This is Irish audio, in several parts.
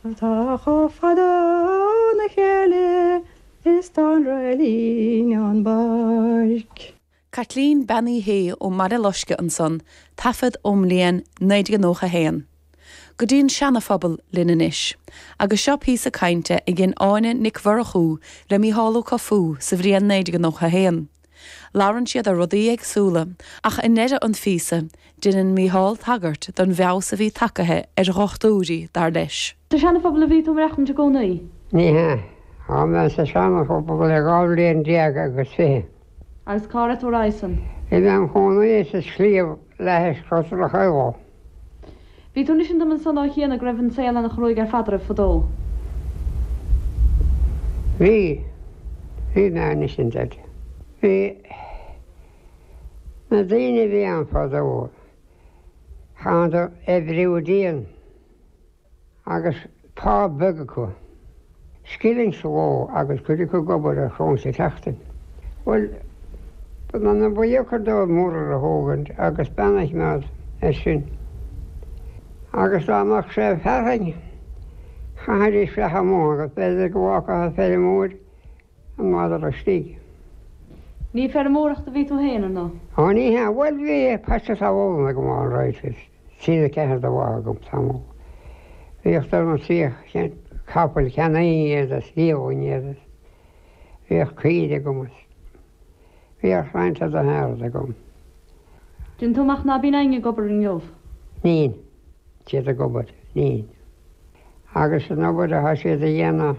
atá chomh fada óna chéile is tá an réilín ón bpáirc. Caitlín Bean Uí Shé ón mBaile Loiscthe ansan, taifead ón mbliain 1991. Go dtí an Seana-Phobal linn anois, agus seo píosa cainte a dhein Áine Nic Mhurchú le Mícheál Ó Cofaigh sa bhliain 1991. Labhrann siad ar rudaí éagsúla, ach i ndeireadh an phíosa, deineann Mícheál tagairt don bhfeabhas a bhí tagaithe ar dhochtúirí, dar leis. Sa Seana-Phobal a bhí tú i gcónaí? Ní hea. Tá mé sa Seana-Phobal le dhá bhliain déag agus fiche. Agus cá raibh tú roimhe san? Bhí mé im chónaí sa sliabh le hais Crois Rachael. Bhí tú ag insint dom ansan ó chianaibh go raibh an saol ana-chruaidh ar fad oraibh fadó. Bhí, bhí mé ag insint. Bhí na daoine a bhí ann fadó, chaitheadar oibriú dian. agus pá beag acu, scilling sa ló agus cuid acu ag obair ar choróin sa tseachtain. Bhuel, b'ionann an buíochan dóibh murar a thógaint agus beanadhmad air sin. Agus dá mbeadh sé ag fearthainn, chaithfidís bheith amuigh agus b'fhéidir go bhfágfadh an feirmeoir an madra istigh. Ní ag feirmeoireacht a bhí tú féin, ar ndóigh? Ó, ní hea. Bhuel, bhí paiste talún agam, alright, is. Bhí ceathair de bha agam tamall. Bhíodh dorn an tríocha cent capaill cheannaínn iad is dhíolainn iad is bhíodh caoire agam is bhíodh roinnt fhada an earraid agam. Déanann tú amach ná bíonn éinne ag obair inniu? Nín siad ag obair. Nín. Agus an obair atá siad a dhéanamh?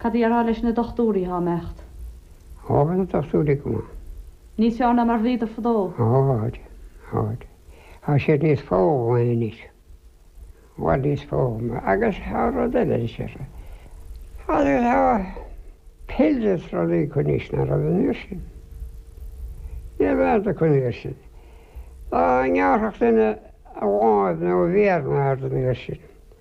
Cad déarfá leis na dochtúirí atá ag imeacht? Ó, thá na dochtúirí go maith. Níos fearr ná mar bhíodar fadó? Ó, tháid, tháid. Tá siad níos foghlamtha anois. I bhfad níos foghlamtha. Agus tá rud eile anseo. Tá pills is rudaí acu anois ná raibh an uair sin. Ní raibh dada acu an uair sin. Dá ngearrfadh duine a lámh nó a mhéar nó aon rud an uair sin.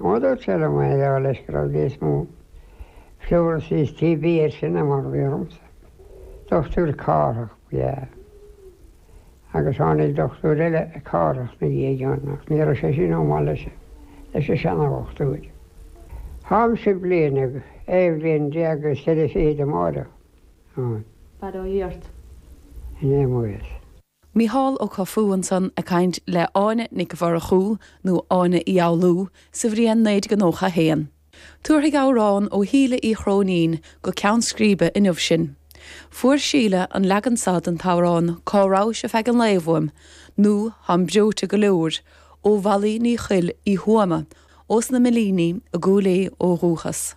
Mar dúirt sé liom é a gheall leis go raibh níos mó pleurisy is TB air sin ná mar a bhí ormsa. Dochtúir Cárthach ba ea é. Agus tháinig dochtúir eile, Cárthach, 'na dhiaidh ann, ach ní raibh sé sin chomh maith leis an seana-dhochtúir. Tháimse bliain déag, aon bhliain déag is ceithre fichid amárach. An. fad ó dhoirt. in aon mhuir as. Mícheál Ó Cofaigh ansan ag caint le hÁine Nic Mhurchú, nó Áine Uí Fhoghlú, sa bhliain 1991. Tabharfaidh amhrán ó Shíle Uí Chróinín go ceann scríbe inniu sinn. Fuair Síle an leagan so den amhrán Cá Rabhais ar Feadh an Lae uaim, nó Táim Breoite go Leor, ó Mholly Ní Choill Uí Thuama, ós na Millíní i gCúil Aodha ó dhúchas.